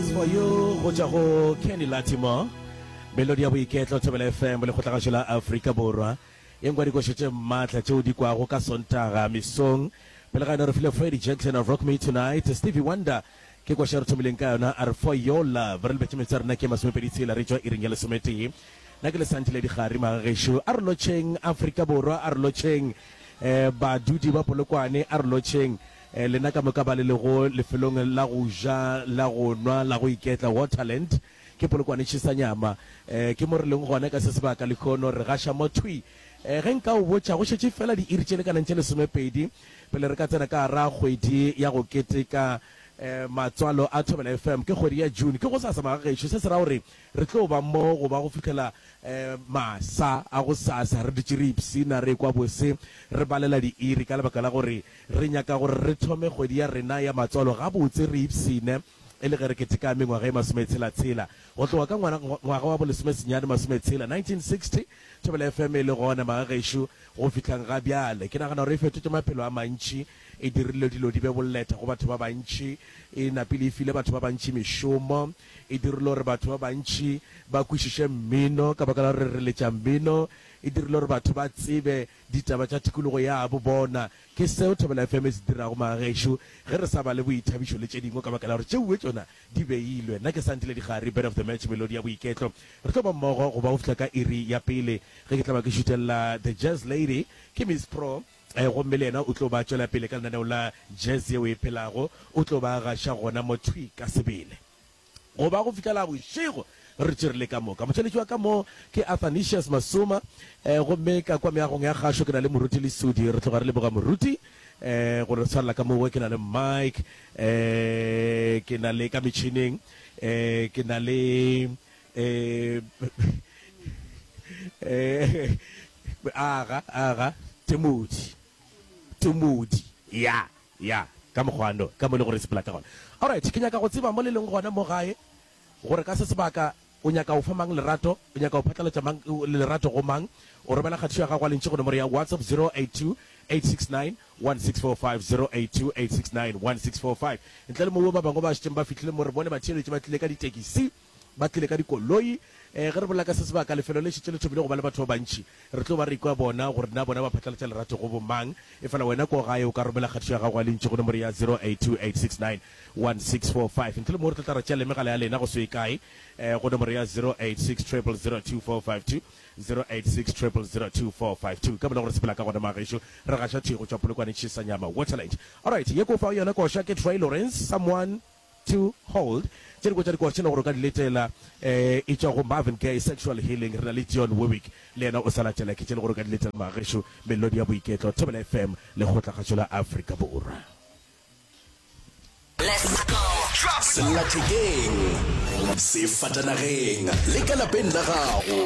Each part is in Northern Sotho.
Tsebo yo go tšwa go Kenny Latimore, Melodi ya Boiketlo, Thobela FM, Lekgotlagašo la Afrika Borwa. Yeng kwa dikošo tše maatla tšeo di kwago ka Sontaga mesong. Pele ga yona re file Freddie Jenklener, Rock Me Tonight, Stevie Wonder ke koša e re thomileng ka yona, a re For Your Love. Re lebetše metsotso ya rena ke ye masomepedi tshela re tšwa iring ya lesometee. Na ke lesanti le dikgari magagešo. A re lotšheng Afrika Borwa, a re lotšheng badudi ba Polokwane, a re lotšheng Lena ka moka ba le lego lefelong la go ja, la go nwa, la go iketla, Waterland ke polokwanetši sa nyama. Ke mo re leng gona ka se sebaka lehono re gaša mo thwi. Ge nka o botša, go šetše feela diiri tše lekanang tše lesomepedi pele re ka tsena ka gar'a kgwedi ya go keteka matswalo a Thobela FM. Ke kgwedi ya June, ke gosasa maga gešo, se se ra gore re tlo ba mo goba go fihlela masa a gosasa re dutše re ipshina re ekwa bose re balela diiri ka lebaka la gore Re nyaka gore re thome kgwedi ya rena ya matswalo gabotse re ipshine e le ge re keteka mengwaga ye masometshela-tshela. Go tloga ka ngwana, ngwaga wa bolesomesenyane masometshela, 1960, Thobela FM e le gona, magagešo, go fihlang ga bjale. Ke nagana gore e fetotše maphelo a mantši, e dirile dilo di be boleta go batho ba bantši, e napile e file batho ba bantši mešomo, e dirile gore batho ba bantši ba kwešiše mmino ka baka la gore re letša mmino, e dirile gore batho ba tsebe Ditaba tša tikologo yabo bona ke seo Thobela FM e se dirago magagešo ge re sa bale boithabišo le tše dingwe ka baka la gore tšeuwe tšona di beilwe. Nna ke Sandile Dikgari, Bed of the Match, Melodi ya Boiketlo. Re tlo ba mmogo go ba go fihla ka iri ya pele ge ke tla ba ke šutelela The Jazz Lady ke Miss Pro gomme le yena o tlo ba tšwela pele ka lenaneo la Jazz yeo e phelago. O tlo ba gaša gona mo thwi ka sebele. Go ba go fihlela bošego re tširile ka moka. Motšweletši wa ka mo ke Athanasius Masuma gomme ka kwa meagong ya gašo ke na le Moruti Lesudi. Re tloga re leboga Moruti gore re tshwalela ka mowe. Ke na le Mike, ke na le ka metšhineng ke na le Aga, Aga, Timothy, Timothy, ya. Ya, ka mokgwano, ka mo e lego gore e sepela ka gona. Alright, ke nyaka go tseba mo le leng gona mo gae, gore ka se sebaka o nyaka go fa mang lerato, o nyaka go phatlalatša mang lerato go mang. O romela kgathišo ya gago ya lentšu go nomoro ya WhatsApp 0828691645, 0828691645. Ntle le mowo, ba bangwe ba šetšeng ba fihlile mo re bone ba theeletše ba tlile ka ditekisi. Ba tlile ka dikoloi. Ge re bolela ka se sebaka, lefelo le šetše le thomile go ba le batho ba bantši. Re tlo ba re ikwa bona gore na bona ba phatlalatša lerato go bomang. Efela wena ko gae o ka romela kgatišo ya gago ya lentšu go nomoro ya 0828691645 ntle le moo re tlo tla ra tšea le megala ya lena go se ye kae go nomoro ya 0860002452, 0860002452. Ka bona gore se phela ka gona mma gešo. Re gaša thwi go tšwa Polokwane Tšhesanyama Waterland. Alright, ye ke o fago yona koša ke Troy Lawrence, Someone. to hold tše dingwe tša dikwatšhela gore o ka di letela e tšwa go Marvin Gaye, Sexual Healing. Re na le Dionne Warwick, le yena o sa latela ke tše e le gore o ka di letela mma gešo, Melodi ya Boiketlo, Thobela FM, Lekgotlagatšo la Afrika Borwa. Sellathekeng, sefatanageng le ka lapeng la gago,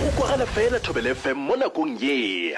go kwagala fela Thobela FM mo nakong ye.